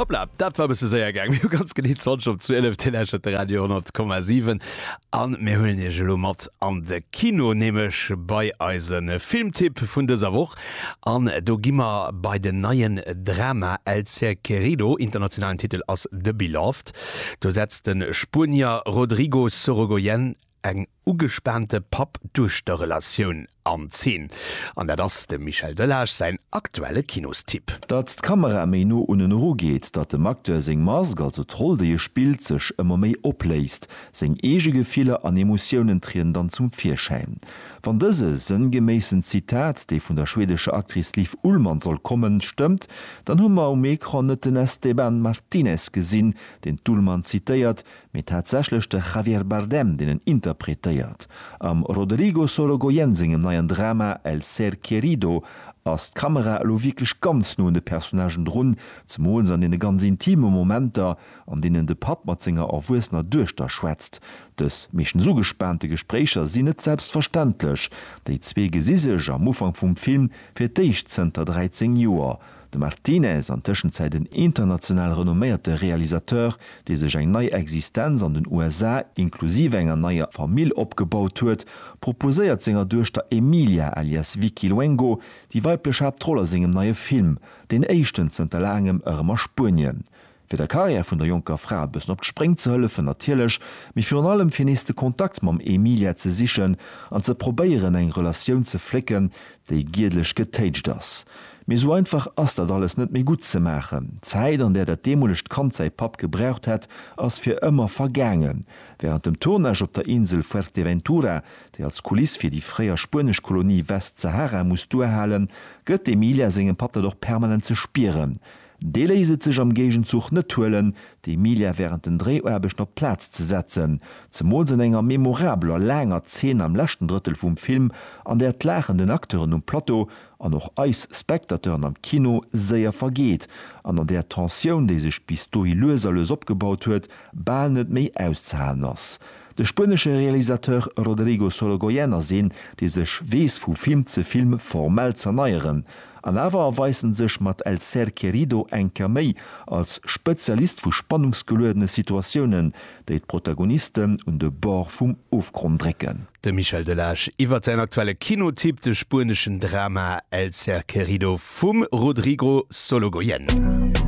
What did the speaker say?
Hoppla, dat war bësse séier gaang. Mir hu ganz genee 20 op 12, Dir lauschtert de Radio 10,7 an mir huelen Iech elo mat an de Kino, nämlech bei eise Filmtipp vun dëser Woch. An do gi mer bei den neien Drama El ser querido, internationalen Titel ass The Beloved. Do setzt de Spuenier Rodrigo Sorogoyen eng ugespaante Papp-Duechter-Relatioun an Zeen. An dat ass dem Michel Delage säin aktuelle Kinostipp. Datt d'Kamera méi no un en eru geet, datt dem Acteur seng Mask, also d'Roll déi e spillt, sech ëmmer méi opléist. Seng eege Gefiller an Emotiounen trieden dann zum Virschäin. Wann dëse sënngeméissen Zitat, dee vun der schwedescher Actrice Liv Ullmann soll kommen, stëmmt, dann hu mer um Ecran net den Esteban Martinez gesinn, deen d'Ullmann zitéiert, Mee tatsächlech de Javier Bardem, deen en interpretéiert. Am Roderigo Sorogoyen sengem neien Drama El ser querido ass d'Kamera elo wierklech ganz no un de Personnagen drun, zemools an deene ganz intime Momenter, an deenen de Papp mat senger erwuessener Duechter schwätzt. Dës meeschtens ugespaante Gespréicher sinn net selbstverständlech. Déi zwee gesi sech am Ufank vum Film fir d'éischt zënter 13 Joer. De Martinez, an Tëschenzäit en international renomméierte Realisateur, dee sech eng nei Existenz an den USA, inklusiv enger neier Famill opgebaut huet, proposéiert senger Duechter Emilia alias Vicky Luengo déi weiblech Haaptroll a sengem neie Film, deen éischten zënter laangem, erëm a Spuenien. fir der Carrière vun der jonker Fra e bëssen op d'Spréng ze hëllefen natierlech, mee virun allem fir nees de Kontakt mam Emilia ze sichen an ze probéieren eng Relatioun ze flécken, déi giedlech getéitscht ass. Mee esou einfach ass dat alles net méi gutt ze maachen. D'Zäit an där dat deemolegt Kand säi Papp gebraucht hätt, ass fir ëmmer vergaangen. Wärend dem Tournage op der Insel Fuerteventura, déi als Kuliss fir déi fréier spuenesch Kolonie Westsahara muss duerhalen, gëtt d'Emilia sengem Papp dat och permanent ze spieren, Dee léisst et sech am Géigenzuch net huelen, d'Emilia wärend den Dréiaarbechten op d'Plaz ze setzen, zemools an enger memorabeler, laanger Zeen am leschten Drëttel vum Film, an där d'Laachen den Acteuren um Plateau an och eis Spectateuren am Kino séier vergeet an an där d'Tensioun, déi sech bis dohi lues a lues opgebaut huet, bal net méi auszehalen ass. De spuenesche Realisateur Rodrigo Sorogoyen ass een, dee sech weess vu Film ze Film formell z'erneieren. An awer erweist en sech mat El ser querido eng Kéier méi als Spezialist vu spannungsgeluedene Situatiounen, déi d'Protagonisten un de Bord vum Ofgronn drécken. De Michel Delage iwwert säin aktuelle Kinotipp, de spueneschen Drama El ser querido vum Rodrigo Sologoyen.